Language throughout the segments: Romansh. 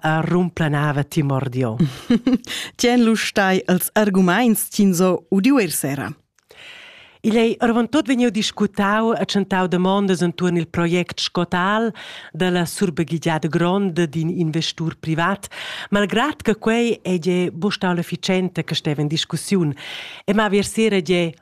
a rumplanava ti mordio. Tien lu stai els arguments tin so udiu er sera. Igl ei orvon tot vegniu discutau e tschentau demondas entuorn il project Scotal dalla surbegligiada gronda d'in investur privat, malgrad che quei ei buca stau l'efficiente che steva in discussiun e ma ver sera gie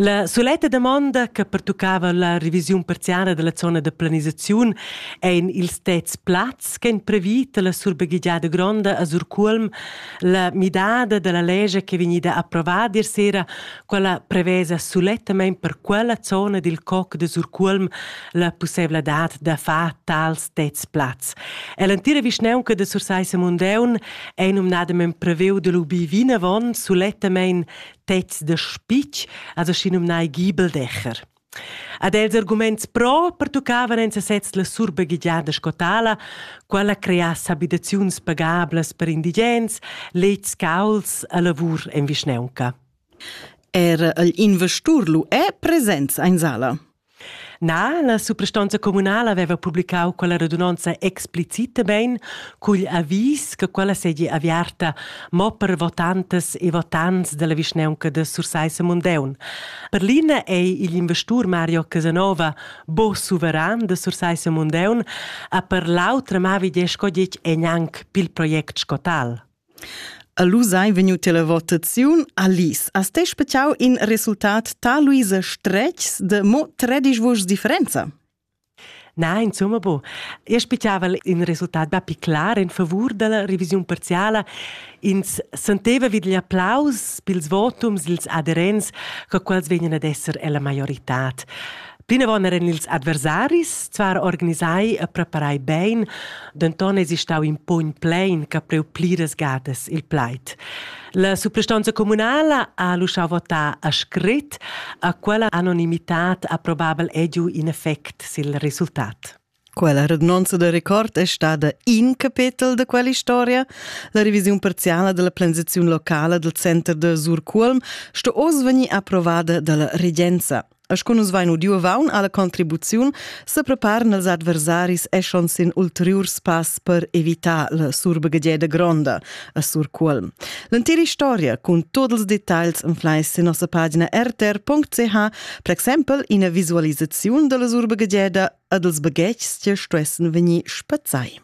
La suletta damonda che pertuccava la revisiun parziala della zona da planisaziun ein ils tets plazs che ein previt la surbaghegiada gronda a Surculm, la midada della legge che vegnida approvada ieri sera, quella prevesa sulettamente per quella zona del COC de Surculm la possibilità da far tals tets plazs. E l'antira vischneunca de Sursaissa Mundeun è nominadamen preveu dell'UB vinavon sulettamente pezs de spitg, also schinumnai Gibeldächer. Ad els arguments pro pertuccavan en sesez la surbegigiada scotala, quella creasse abitaziuns pagablas per indigens, lets cauls a lavur en vischneunca. Er il investur lu è presents in sala. Na, la suprastonza communala aveva publicau quella radunonza explicitamein cugl avis che quella seigi aviarta mo per votantas e votants dalla vischnaunca da Sursaissa Mundeun. Per l'ina ei igl investur Mario Casanova bo suveran da Sursaissa Mundeun, a per l'autra mavi de sco detg ei gnanc pil project scotal. A Lus ei vegniu televotaziun. Alice, has ti speciau in resultat taluise stretgs de mo tredisch vuschs differenza? Nein, insomma, bo. Io spiegava in resultat bapi clar in favur della revisiun parziala. Ins senteva vid gli applaus pils votums, ils aderents, che quels vegnan ad esser ella maioritad. Plinavon eran ils adversaris zvar organisai e preparai bein, denton eis stau in pogn plein che preu pliras gadas il plaid. La suprastonza communala ha lu schau votar a scrit, a quella anonimitad ha probabel ediu in effect sil resultat. Quella radnonza da record è stada in capetel da quell'istoria. La revisiun parziala della planzaziun locala del center de Surculm sto oz venir approvada dalla regenza. As con nus vain udiu vaun alla contribuziun se preparen els adversaris eschon sin ulteriurs pass per evitar la surbegadieda gronda. a Sur Cuolm. L'entira storia cun tuot ils detagls inflais sin nossa pagina rtr.ch, per exempel ina visualisaziun dalla urba Gedieda e dels baghetgs che stuessen vegnir spazzai.